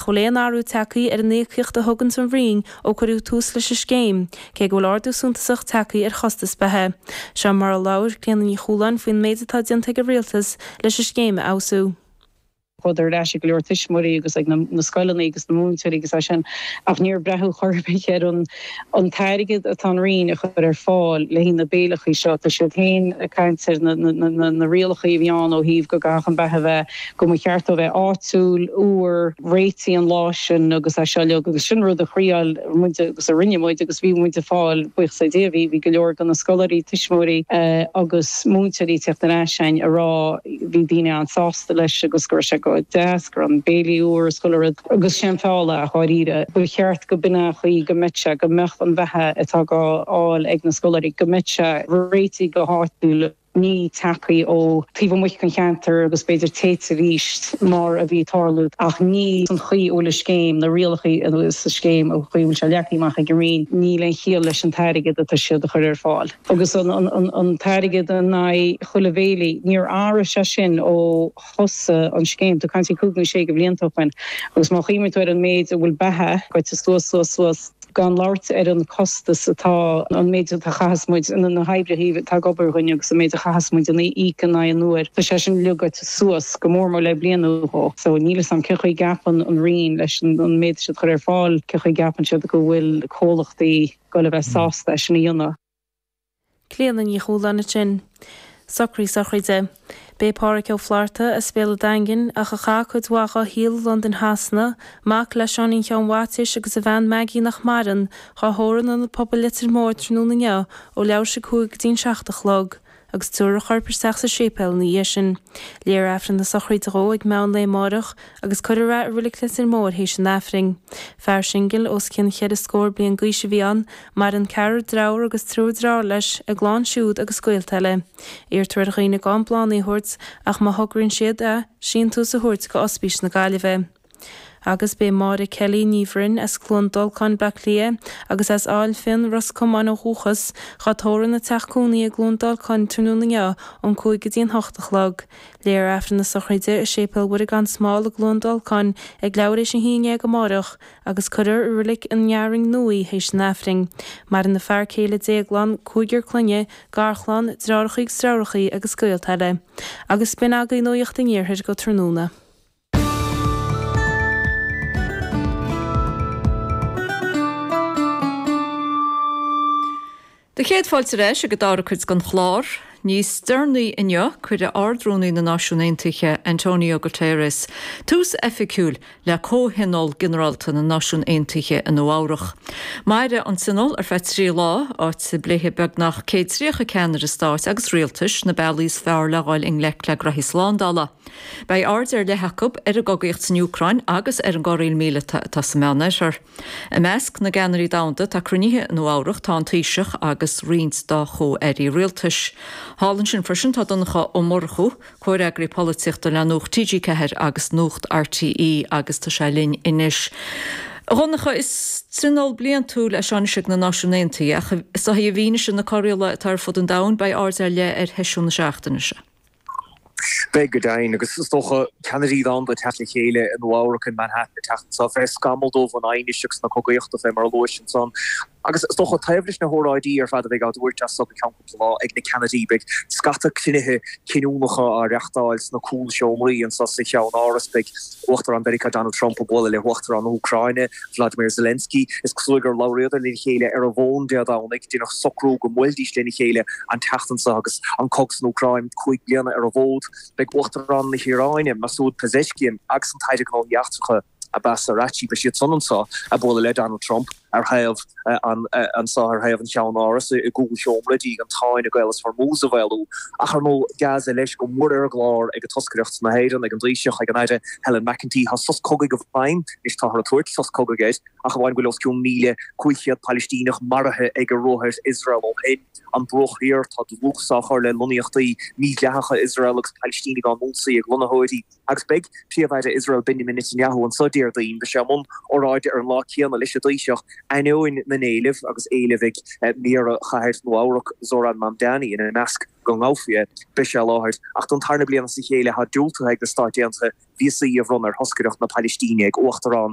Níl aon athrú tagtha ar an íocaíocht a thuganns an Roinn ó cuireadh tús leis an scéim, cé go bhfuil ardú suntasach tagtha ar chostas beatha. Seo mar a labhair Clíona Ní Chualáin faoin méid atá déanta ag an Rialtas leis an scéim a fheabhsú. Chuadar ar ais ag go leor tuismitheoirí agus ag na scoileanna agus na múinteoirí agus é sin ach níor breathnaíodh chor ar bith ar an. an t-airgead atá an Roinn a chur ar fáil le haghaidh na béileachaí seo. Tá siad féin ag caint ar na rialachaí a bhí ann ó thaobh go gcaithfeadh an beatha a bheith, go mba cheart dó bheith áitiúil, úr, réitithe an lá sin agus é seo uilig. Agus sin rud a thriáil muid agus a rinne muid agus bhí muid ag fáil, buíochas le Dia, bhí go leor de na scoláirí, tuismitheoirí agus múinteoirí ag teacht ar ais againn a rá, bhí daoine an-sásta leis agus go raibh sé go deas go raibh an béilí úr is chuile rud agus sé an feall é dháiríre. Ba cheart go mb'in é an chaoi go mbeadh sé go mbeadh an bheatha atá dhá fháil ag na scoláirí go mbeadh sé réitithe go háitiúil ní tagtha ó taobh amuigh den cheantar agus b'fhéidir téite arís mar a bhí tarlú ach ní san chaoi a bhfuil an scéim na rialacha agus an scéim an chaoi a bhfuil sé leagtha amach ag an Roinn níl aon chiall leis an t-airgead atá siad a chur ar fáil. agus an t-airgead in aghaidh chuile bhéilí, níor athraigh sé sin ó thosaigh an scéim, tá tú ag caint ar cúig nó sé de bhlianta ó shin, agus má chuimhníonn tú ar an méid a bhfuil beatha goite suas, suas, suas, gan labhairt ar an costas atá, an méid a chaitheas muid, na hoibrithe atá ag obair againn agus an méid a chaitheas muid a n-íoc in aghaidh an uair, tá sé sin uilig goite suas, go mór mór le bliain nó dhó, so níl 'fhios a'm cé chaoi a gceapann an Roinn leis an méid atá siad a chur ar fáil, cé chaoi a gceapann siad go bhfuil comhlachtaí, goil a bheith sásta é sin a dhéanamh. Clíodhna Ní Chualáin ansin. Socruithe sochraide. Beidh Páraic Ó Flaithearta as Béal a' Daingin, ach a chaith cuid mhaith dhá shaol i Londain Shasana, mac le Seáinín Sheáin Mhaitiais agus a bhean Maggie nach maireann, dhá thórramh in Ionad Pobail Leitir Móir tráthnóna inniu ó leathuair théis a cúig go dtí'n seacht a chlog. agus tabharfar a chorp isteach sa séipéal ina dhiaidh sin. Léifear Aifreann na sochraide dhó ag meán lae amáireach agus cuirfear é i Reilig Leitir Móir théis an Aifrinn. Fear singil, os cionn cheithre scór bliain d'aois a bhí ann, maireann ceathrar deirfiúr agus triúr deartháir leis, a gclann siúd agus gaolta eile. Iarrtar ar dhaoine gan bláthanna a thabhairt ach má thograíonn siad, a, síntiús a thabhairt do Ospís na Gaillimhe. Agus beidh Máire Kelly, Ní Bhroin, as Cluain Dolcáin, Baile Átha Cliath, agus as Ail Finn, Ros Comáin, ó dhúchas, dhá tórramh ina teach cónaí i gCluain Dolcáin tráthnóna inniu ón cúig go dtí an hocht a chlog. Léifear Aifreann na sochraide i Séipéal Mhuire Gan Smál i gCluain Dolcáin ag leathuair théis a haon déag amáireach, agus cuirfear í i Reilig an Fhearainn Nua théis an Aifrinn. Maireann a fear céile Déaglán, cúigear clainne, garchlann, deartháireachaí agus deirfiúrachaí agus gaolta eile. Agus b'in agaibh Nuaíocht an Iarthair go tráthnóna. Do chéad fáilte ar ais ag an dara cuid den chlár. Níos deireanaí inniu, cuirfidh Ard-Rúnaí na Náisiún Aontaithe, Antonio Guterres, tús oifigiúil le Comhthionól Ginearálta na Náisiún Aontaithe i Nua-Eabhrac. Mairfidh an tionól ar feadh trí lá, áit a bpléifidh beagnach céad tríocha ceannaire stáit agus rialtais na bealaí is fearr le dhul i ngleic le gnoithí slándála. Beidh aird ar leith acu ar an gcogaíocht san Úcráin agus ar an gcorraíl míleata atá sa Mheánoirthear. I measc na gceannairí domhanda atá cruinnithe i Nua-Eabhrac tá an Taoiseach agus roinnt dá chomh-airí rialtais. Thall ansin freisin tá Donncha Ó Murchú, comhfhreagraí polaitíochta le Nuacht TG4 agus Nuacht RTÉ agus tá sé linn anois. A Dhonncha, is tionól bliantúil é seo anois ag na Náisiúin Aontaithe ach i bhfianaise na corraíola atá ar fud an domhain beidh aird ar leith ar sheisiún na seachtaine seo. Beidh, go deimhin, agus is dócha, ceannairí domhanda ag teacht le chéile i Nua-Eabhrac, in Manhattan, an tseachtain seo. fé scamall dubh an aighnis agus na cogaíochta fé mar a luais ansan. Agus, is dócha, taobh leis na hóráidí ar fad a bheidh á dtabhairt as so go ceann cúpla lá ag na ceannairí, beidh scata cruinnithe cinniúnacha á reachtáil sna cúlseomraí anso sa cheannáras. Beidh. Uachtarán Mheiriceá Donald Trump ag bualadh le hUachtarán na hÚcráine, Vladimir Zelensky. Is cosúil gur labhraíodar lena chéile ar an bhfón Dé Domhnaigh. Deineadh socrú go mbuailfidís lena chéile an tseachtain seo agus an cogadh san Úcráin cúig bliana ar an bhfód. Beidh Uachtarán na hIaráine, Masoud Pezeshkian agus an tAire Gnóthaí Eachtracha, Abbas Araghchi, beidh siadsan anso, ag bualadh le Donald Trump. ar thaobh an tSáith ar thaobh an cheannárais i gcúlsheomra d'iarraidh an tsáinn i gCaolas Hormuz a mhaolú, ach ar ndóigh Gaza leis go mór ar an gclár ag toscaireacht na hÉireann, ag an dTaoiseach, ag an Aire Helen McEntee. Tá sos cogaidh i bhfeidhm, anois táthar ag tabhairt sos cogaidh air, ach amháin go bhfuil os cionn 1,500 Pailistíneach maraithe ag ruathair Iosrael ó shin. An Bruach Thiar, tá dlús á chur le lonnaíochtaí mídhleathacha Iosrael agus Pailistínigh á n-ionsaí ag lonnaitheoirí. Agus beidh Príomh-Aire Iosrael Benjamin Netanyahu anso Déardaoin, beidh sé i mbun óráide ar an lá céanna leis an dTaoiseach, ainneoin na n-éileamh agus éilimh ag Méara Chathair Nua-Eabhrac, Zohran Mamdani, ina measc, go ngabhfaí é. Beidh sé i láthair, ach don tarna bliain as a chéile tá diúltaithe ag na Stáit Aontaithe víosaí a bhronnadh ar thoscaireacht na Pailistíne ag Uachtarán.